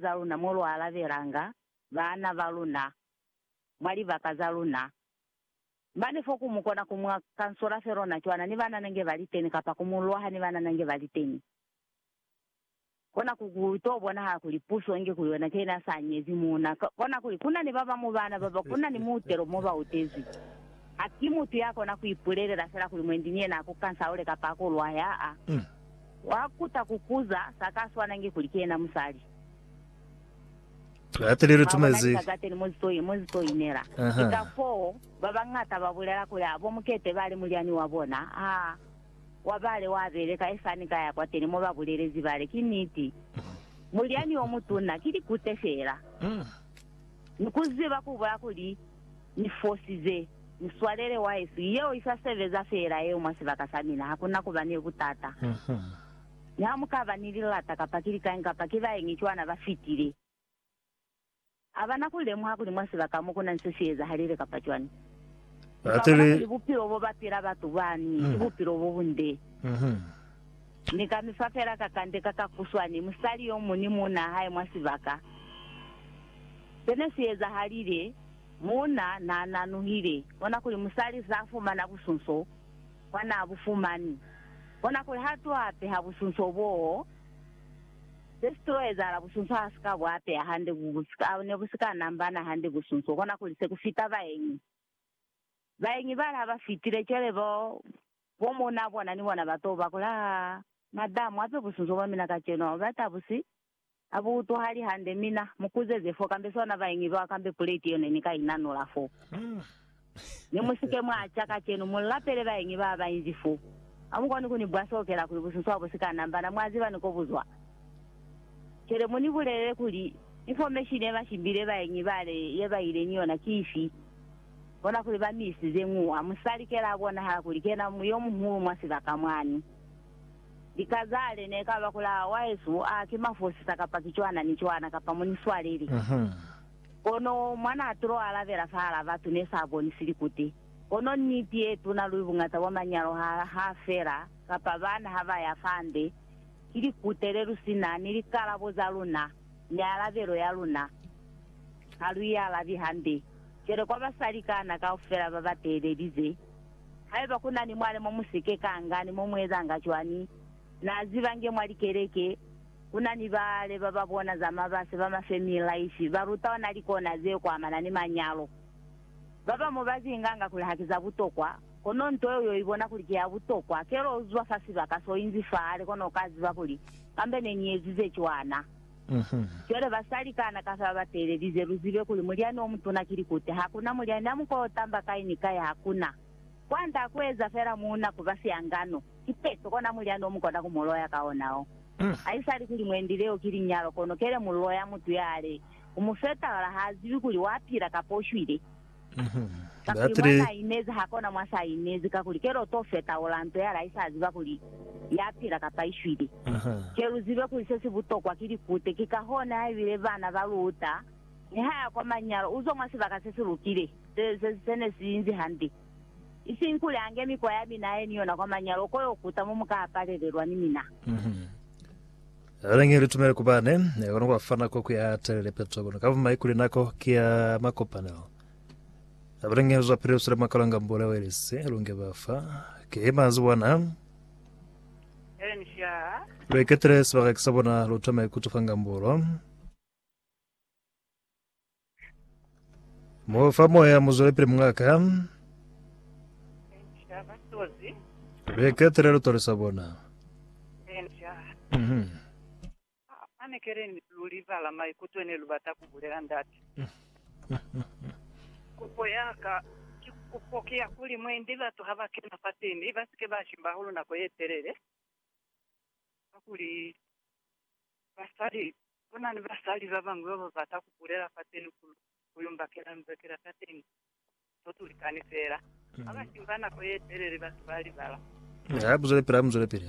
za luna mo lu alabelanga baana ba luna mwa libaka za luna. Mane fo ku mu kona ku mwa kansola felo na cwana ni banana nge ba li teni kapa ku mu lwaha ni banana nge ba li teni. Kona ku ku to bonahala kuli puso inge ku yona ke ina sa nyezi muuna. Kona kuli ku na ni ba bamu baana baba ku na ni muutelo mo ba utezwi. Ha ki mutu ya kona ku ipulelela fela kuli mwendi ni yena a ku kansaule kapa a ku lwahe, aa. Wa kuta ku kuza sa ka swana nge kuli ki yena musali. Lati li lu tumezi. Mwa bona, ni ka kateni mo zito, mo zito inela. Ki ka foo ba bañata ba bulela kuli, Abo mukete ba li mulyani wa bona, ha wa bale wa beleka. E sani ka ya kwateni mo ba bulelezi bale. Ki niti. Mulyani yo mutuna ki likute fela. Ni ku ziba ku bula kuli Ni fosize. Muswalele wa heswi, yeo i sa sebeza feela yeo mwa sibaka sa mina, ha ku na ku ba ni butata. Mi ha mu ka ba ni lilata kapa ki likañi kapa ki baeñi cwana ba fitile, ha ba na ku lemuha kuli mwa sibaka mo ku na ni se si ezahalile kapa cwani. Lu ka bona kuli bupilo bo ba pila batu bani ki bupilo bo bunde. Ni ka mi fa fela kakande ka kakuswani, musali yo muñwi ni muunaa hae mwa sibaka. Se ne si ezahalile, muuna naa nanuhile, kona kuli musali saa fumana busunso bwa naa bu fumani, kona kuli ha to apeha busunso boo, se si to ezahala busunso ha si ka bu apeha hande bu ne bu si ka nambana hande busunso, kona kuli se ku fita baenyi. Baenyi bale ha ba fitile, cwale bo Bo mona bona ni bona ba to ba kula ha madamu ape busunzo bwa mina kacenu hao bata busi ha bu utwahali hande mina mu kuzeze fo kambe sona ba ingi lwa kambe puleti yone ni ka inanula fo ni musike mwa ca kacenu mu lapele ba ingi ba ba inzi fo ha mu koni ku ni bwa sokela kuli busunzo ha bu si ka nambana mwa ziba ni ko bu zwa cwele mu ni bulelele kuli infomeshini ye mashimbile ba ingi ba le ye ba ile ni yona ki ifi Bona kuli ba mi isize ñuha. Musali kela a bonahala kuli ki yena yo muhulu mwa sibaka mwani. Lika za hae ne ka ba kuli, Aa, wahesu, aa, ki mafosisa kapa ki cwana ni cwana, kapa mu ni swaleli. Kono mwa n'a tulo alabela fahal'a batu ne s'a bonisi likute. Kono niti ye tuna luli buñata bwa manyalo ha, ha fela, kapa bana ha ba ya fande, ki likute le lu si na ni likalabo za luna. ni alabelo ya luna, ha lu i alabi hambe. Cwale kwa basali kana kaufela ba ba teelelize, haiba ku na ni mwale mo mu si ke ka nga ni mo mu ezanga cwani, na ziba nge mwa likeleke ku na ni baale ba ba bona za mabasi ba ma family life ba ruta ona likona ze kwamana ni manyalo. Ba bamu ba zi nganga kuli ha ki za butokwa, Kono nto yeo yo ibona kuli ki ya butokwa. Kelo u zuba fa sibaka so inzi fa hale kono uka ziba kuli, Kambe ne ni ezi ze cwana. Cwale basali kana kafa ba ba teelelize, lu zibe kuli mulyani o mutuna ki likute. Hakuna mulyani a mukoho tamba kai ni kai, hakuna. Kwand'a ku eza fela muuna ku ba sihangano, ki peto kona mulyani o mu kona ku mu loya ka ona o. Haisali kuli mwendi leo ki linyalo, kono kele mu loya mutu ya hale, u mu fetahula, ha zibi kuli wa pila kapa u shwile. Kakuli mwa n'a inezi ha kona mwa s'a inezi, kakuli kelo to feta ola nto ya laisa aziba kuli ya pila kapa i shwile. Ke lu zibe kuli se si butokwa ki likute, ki ka hona ha ibile bana ba lu uta ni ha ya kwa manyalo, u zwa mwa sibaka se si lukile, se, se, se ne si inzi hande. Isiñi kuli a nge mikwa ya mina a ye ni yona kwa manyalo ko yo kuta mo mu ka apalelelwa ni mina. Lelani litumelo ku bane, kono kwa fa nako ku ya telele peto, kono ka bumai kuli nako ki ya makopanelo. Lelani lu zwapili lu swile mwa kalanga mbule we lisi, lu nge ba fa. Ki mazi bona. Lu iketele sibaka ki sa bona, lu tome ku tufa ngambulo. Mufa moya muzwelepele mungaka. Benja batozi. Beketele lutole sa bona. Benja. Mhm. Anekele ni lulibala maikuto ne lubata kubulela ndate. Kupo yaka ki kupo ki ya kuli mwendi batu haba kena fate mi basike ba shimba hahulu nako yetelele, kakuli basali Ku na ni basali ba bañwi ba ba bata ku bulela fateni ku lu, ku yo mbakela nzakela ta teñi. To tulikani feela. Ha ba shimba nako ye telele, batu ba libala. Ha, buzelepili, buzelepili.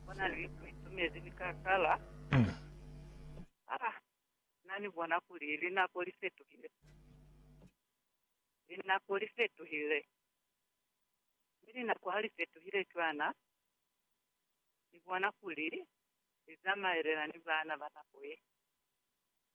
Ku na ni litumezi li ka kala. Ha na ni bona kuli linako li fetuhile. Linako li fetuhile. Mi linako ha li fetuhile cwana. ni bona kuli li zamaelela ni baana ba nako ye.